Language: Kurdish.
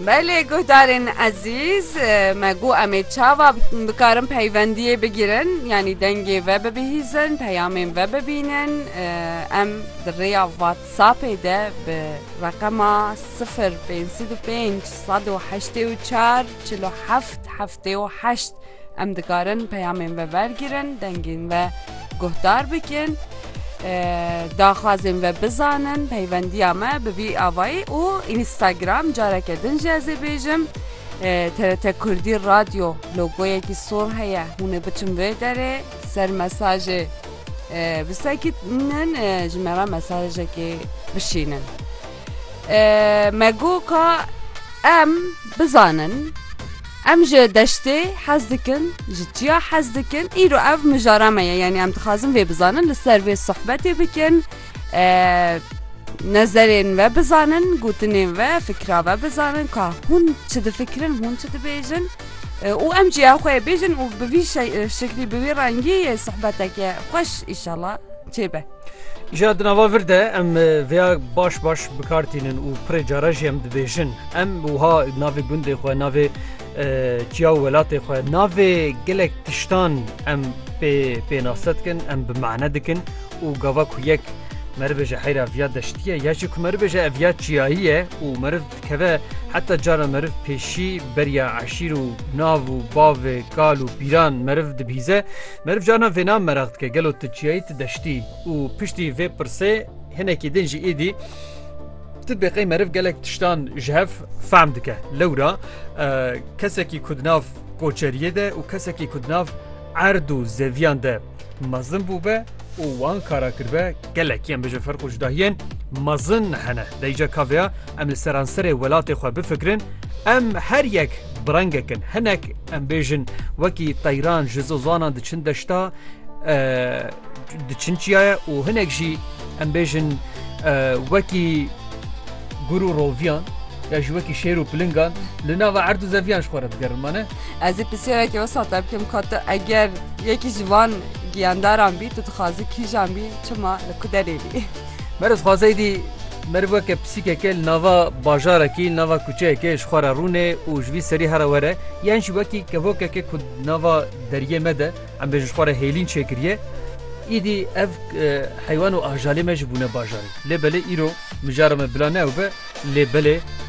Belê guhdarên ezîz me got em ê çawa bikarin peywendiyê bigirin yanî dengê ve bibihîzin peyamên ve bibînin em di rêya watsapê de bi reqema sifir pêncî du pênc sed û heştê û çar çil û heft heft Dê û heşt Em dikarin peyamên ve wergirin, dengên ve guhdar bikin, daxwazên ve bizanin, peyvendiya me bi vî avayî û Înîstagram careke din jî ez ê bêjim TRT Kurdî Radyo logoyekî sor heye hûn ê biçin vê derê ser mesajê bisekinin ji me re mesajekê bişînin. Me got ka em bizanin em ji deştê hez dikin, ji çiya hez dikin, îro ev mijara me ye yanî em dixwazin vê bizanin li ser vê sohbetê bikin. Nezerên ve bizanin, gotinên ve, fikra ve bizanin ka hûn çi difikirin, hûn çi dibêjin. û em ciya xwe bêjin û bi vî şeklî bi vî rengî sohbeteke xweş îşala çêbe. Jîya di nava vir de em vêya baş baş bikar tînin û pirê cara jî em dibêjin. Em wiha navê gundê xwe, navê çiya û welatê xwe, navê gelek tiştan em pê pênase dikin, em bi mane dikin û gava ku yek meriv ji heyra viya deştiye ya jî ku meriv ji eviya çiyayî ye û meriv dikeve heta cara meriv pêşî beriya eşîr û nav û bavê kal û pîran meriv dibîze, Meriv carna vêna meraq dike gelo tu çiyayî tu deştî û piştî vê pirsê hinekî din jî êdî tu bêqey meriv gelek tiştan ji hev fehm dike. Lewra kesekî ku di nav koçeriyê de û kesekî ku di nav erd û zeviyan de mezin bûbe û wan kara kirbe Gelek em bije ferq û cudahiyên mezin hene. Deyca kaveya em li seranserê welatê xwe bifikirin, em her yek bi rengekin. Hinek em bêjin wekî teyran ji zozanan diçin deşta diçin çiyaye û hinek jî em bêjin wekî gur û roviyan ya ji wekî şêr û pilingan li nava erd û zeviyan ji xwe re digerin mane. Ez ê pisyayekî wisa te bikim ka tu eger yekî ji van giyandaran bî tu dixwazî kîjan bî çima li ku derê bî? Mer dixwazey dî meriv weke pisîkeke li nava bajarekî li nava kuçeyekê ji xwe re rûne û ji vî serî here were yan jî wekî kevokeke ku di nava deriyê me de em bêjin ji xwe re hêlîn çêkiriye îdî ev heywan û ajalê me jî bûne bajarî lê belê îro mijara me bila ne ew be lê belê